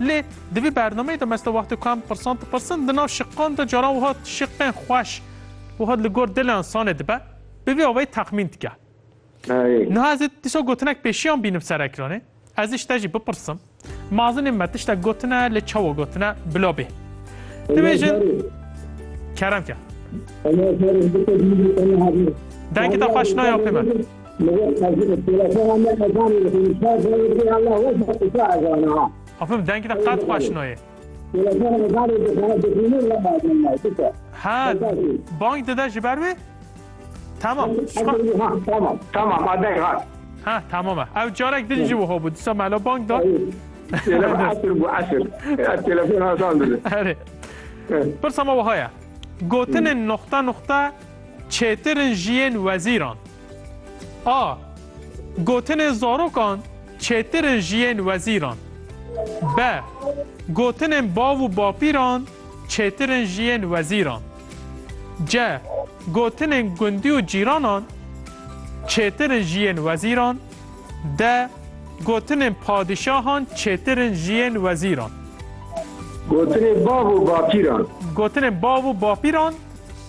Lê di vî bernameyê de me site wextê ku em pirsan dipirsin, di nav şiqan de caran wiha şiqên xweş wiha li gor dilê însanê dibe, bi vî awayî texmîn dike. Niha ez ê dîsa gotinek pêşiyan bînim ser ekranê, ez ê ji te jî bipirsim, Mazinên me tiştek gotine, lê çawa gotine bila bê. Dibêjin Kerem ke. Dengê te xweş nayê apê me. Afif dengê te qet xweş nayê. Ha bang dide ji ber wê? Tamam. Ha tamam e. Ew carek din jî wiha bû. Disa melo bang da. Erê. Pirsa me wiha ye. Gotinên noxta noxta Çêtir in jiyên wezîran. A. Gotinên zarokan çêtir in jiyên wezîran. B. Gotinên bav û bapîran çêtir in jiyên wezîran. C. Gotinên gundî û cîranan çêtir in jiyên wezîran. D. Gotinên padîşahan çêtir in jiyên wezîran. Gotinên bav û bapîran. Gotinên bav û bapîran.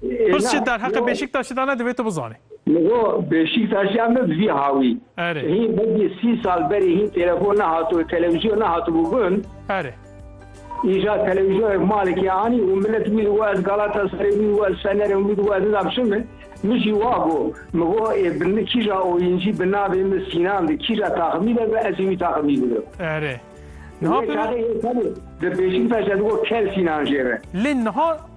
Pirs çi derheqê Bêşîktaşê de ne divê tu bizanî. Li go Bêşîktaşê em ne bi vî hawî. Erê. Hîn belkî sî sal berî hîn telefon nehatibû, televîzyon nehatibû gund. Erê. Îja televîzyonê malekê anî û milet wî digo ez Galataserê wî digo ez Fenerê wî digo ez nizam çi min. Min jî wa got. Min got ê bi kîja oyîncî bi navê min Sînan di kîja taximî de bi ez ê wî taximî bidim. Erê. Niha Wê çaxê yê xelê di Bêşîktaşê digo kel Sînan jê re. Lê niha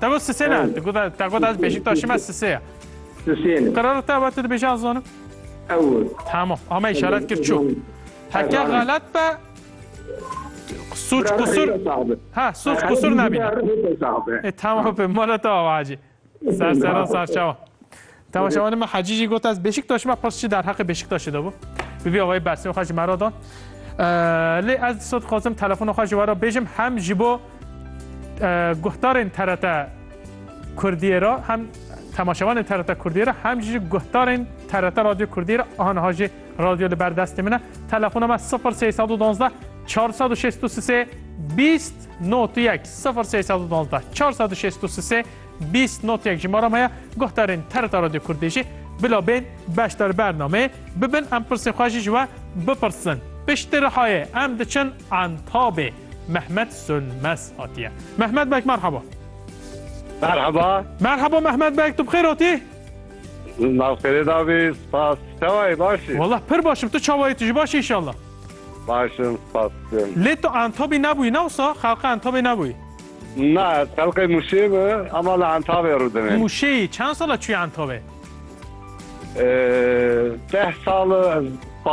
Te got sisê ne. Te got te got ez Beşiktaş'im ez sisê ye. Sisê ne. Karar te vat dibêje ez zonim. Ew. Tamam. Ama işaret kir çû. Heke galet be suç kusur ha suç kusur nabîne. E tamam be mala te avacî. Ser sera serçawa. Temaşevanê me Hecî jî got ez Beşiktaşî me pirs çi derheqê Beşiktaşê de bû. Bi vî awayî bersîna xwe ji me re da. Lê ez disa dixwazim telefona xwe ji we re bêjim hem ji bo guhdarên TRT Kurdiyê re hem temaşevanên TRT Kurdiyê re hem jî guhdarên TRT Radyo Kurdiyê re aha niha jî radyo li ber destê min e. Telefona me 0312 463 20 91 0312 463 Bîst notyek ji me re heye, guhdarên TRT Radyo Kurdî jî bila bên beşdar bernameyê bibin em pirsên xwe jî ji we bipirsin. Piştî Rihayê em diçin Entabê. Mehmet Sönmez hatiye. Mehmet bek merhaba. Merhaba. Merhaba Mehmet bek tu bixêr hatî? Navxêrê dabî spas çawayê başî. Wala pir başim tu çawayê tu ji başî inşallah. Başim spas. Lê tu Entabî nebûyî ne wisa xelqê Entabê nebûyî. Na, telqê Mûşê bi ama li Entawê rûdine. Mûşê çend sal e çûye Entawê? Deh sal e ez